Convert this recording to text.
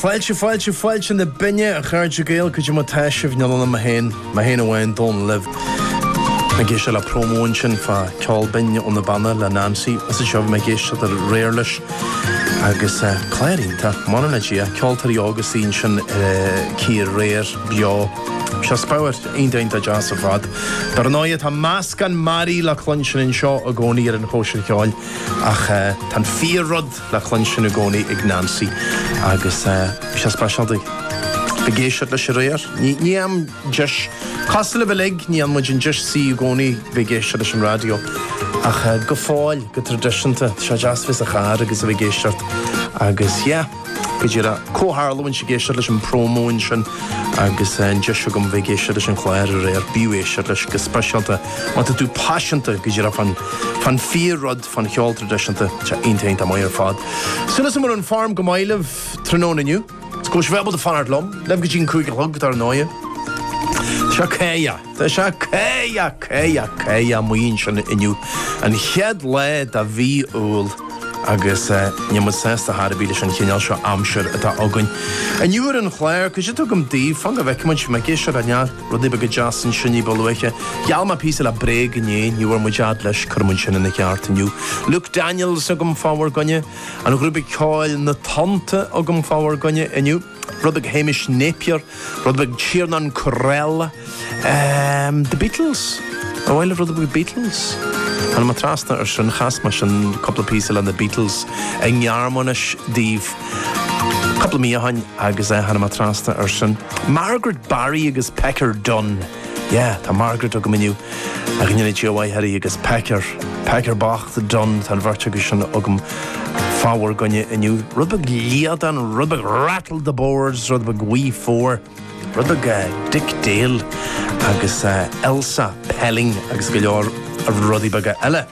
Fáilte, fáilte, fáilte na binne, a chairde Gael, cad é mar atá sibh, níl ann ach mé fhéin, mé fhéin amháin, Dónall libh. Mé ag éisteacht le promo ansin fá Ceol Binn ó na Beanna le Neansaí, ó sea bhí mé ag éisteacht aréir leis agus eh, clár iontach, m'anam le Dia, ceoltóirí óga suí ansin eh, cíor, aréir, beo, seo speabhar, iontach deas ar fad. Dar ndóigh tá meascán mearaí le cluinstin anseo i gcónaí ar an chóisir cheoil ach eh, tá an fíor-rud, le cluinstin i gcónaí ag Neansaí agus bhí sé speisialta ag éisteacht leis aréir. Ní bhíonn deis cosúil libh uilig, ní fhaigheann muid an deis suí i gcónaí bheith ag éisteacht leis an raidió ach go fóill, go traidisiúnta, tá sé deas a bheith sa charr agus a bheith ag éisteacht agus yeah, go díreach comhtharlúint ag éisteacht leis an promo ansin agus an deis agam bheith ag éisteacht leis an chlár aréir, b'fhiú éisteacht leis go speisialta má tá tú paiseanta go díreach fán fíor rud. fán cheol tradisiúnta. Tá iontach iontach maith ar fad. Súil agam go bhfuil an form go maith libh tráthnóna inniu? Is go mbeidh sibh ábalta fanacht liom. Libh go dtí an cúig a chlog dar ndóigh. Sea caoga. Tá sé caoga, caoga, caoga amuigh ansin inniu. An chéad lá de mhí Iúil agus níl muid sásta thar a bheith leis an chineál seo aimsir atá againn. Inniu ar an chlár, cad é atá agam daoibh? Fan go bhfeicfidh muid, bhí mé ag éisteacht ar an. Rudaí beaga deasa ansin ní ba luaithe. Gheall mé píosa le Bréag inné, ní bhfuair muid fhad leis, cuirfidh muid sin ina cheart inniu. Luke Daniels agam fá bhur gcoinne. An ghrúpa ceoil Na Tonnta agam fá bhur gcoinne inniu. Rud beag Hamish Napier, rud beag Tiernan Courell. Ehm, The Beatles? An bhfuil rud beag Beatles? Tháinig mé trasna ar sin, chas mé sin cúpla píosa le na Beatles i nGearmáinis daoibh cúpla mí ó shin agus eh tháinig mé trasna ar sin. Margaret Barry agus Pecker Dunne. Yeah, tá Margaret agam inniu. Ag an Unit GOI Harry agus Pecker. Pecker bocht, Dunne, tá an bheirt acu sin agam fá bhur gcoinne inniu. Rud beag Líadan, rud beag Rattle the Boards, rud beag Wee Four, rud beag Dick Dale agus Elsa Pelling agus go leor rudaí beaga eile.